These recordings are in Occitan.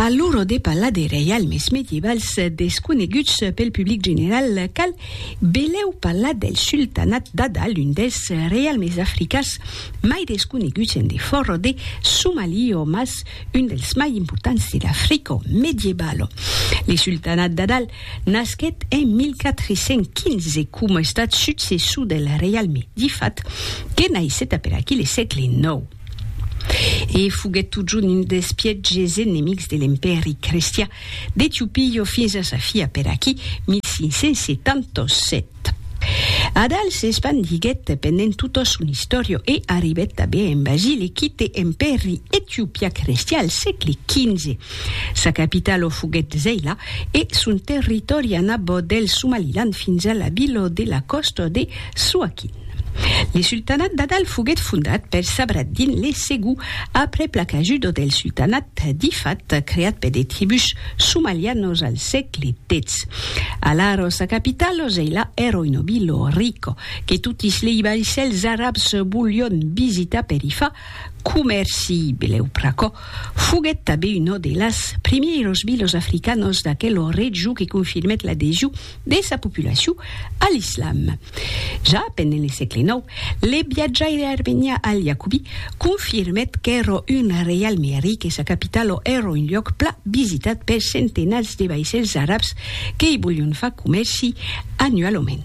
A l'ora de parlar de reialmes medievals desconeguts pel public general, cal belèu parlar del sultanat d'Ada, l'un dels reialmes africans mai desconeguts en defòra de Somalio, mas un dels mai importants de l'Africa medievalo. Le sultanat d'Ada nasquèt en 1415 coma estat successor del reialme d'Ifat, que naissèt aperaquí le sègle ix. e foguèt totjorn un des pièges enemics de l'Empèri Cristian d'Etiopia fins a sa fi per aquí, 1577. Adal s'espandiguèt pendent tota son istòria e arribèt tanben en Basile, quite Empèri Etiopiacristian al sègle XV. Sa capital o foguèt Zeila e son territòri anabò del Somaliland fins a la vila de la còsta de Suakin. Le sultanat d'Adal foguèt fondat per Sabr ad-Din le Segon aprèp la cajuda del sultanat d'Ifat creat per de tribús somalianos al sègle xix. Alara sa capital, Zeila, èra una vila rica que totis lei vaissèls arabs volion visitar per i far Comèrci bilhèu pr'aquò, foguèt tanben una de las primièros bilhos africanos d'aquela region que confirmèt l'adhesion de sa populacion a l'islam. Ja pendent le sègle nòu, le viatjaire armenian Al-Yacubi confirmèt qu'èra un reial mèri que sa capitala èra un luòc pla visitat per centenats de vaissèls arabs que i volion far comèrci annualament.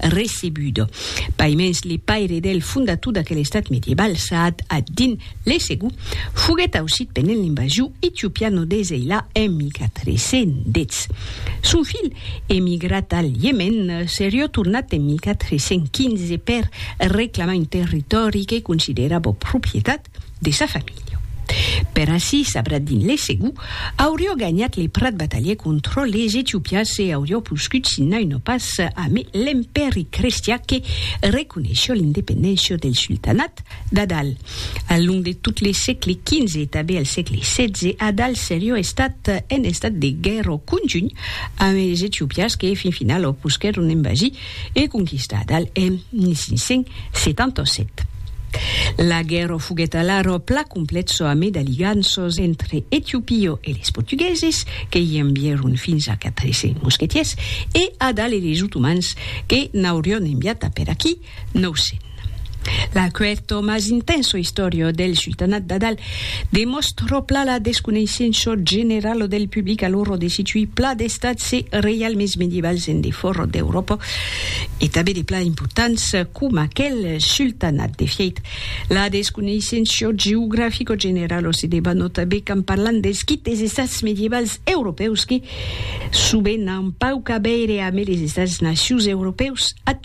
recebudo. Paimens le paire del fondator d'aquel estat medieval, Sa'ad ad-Din l'Esegu, foguèt aucit pendent l'invasion etiopiano de Zeila en 1410. Son filh, emigrat al Iemèn, serió tornat en 1415 per reclamar un territòri que considerava propietat de sa familha. Per aicí, Sabradin le Segu aurió ganhat le prat batalhe contra les Etiopians e aurió poscut signar una pas ame l'Empèri crestiá que reconeishió l'independéncia del Sultanat d'Adal al long de tot le sègle XV e tabé al sègle XVI. Adal serió estat en estat de guèrra conjunh ame es Etiopians que fin finala posquèron envasir e conquistat al en 1577. La guèrra foguèt alara pla complètsa amé d'aliganças entre Etiopio e les Portugueses, que i envièron fins a 400 mosquetiers, e Adal e les Otomans, que n'aurion enviat a per aquí 900. L'acuerto mas intenso istorio del sultanat d'Adal demòstro pla la desconeissenço generalo del public a l'oro de situir pla d'estats e reialmes medievals en defòra d'Euròpa e tanben de pla importants coma aquel sultanat. De fièit, la desconeissenço geografico generalo se debanota be quand parlam dels quites estats medievals europèus que, sovent, an pauc a veire amé les estats-nacius europèus actuals.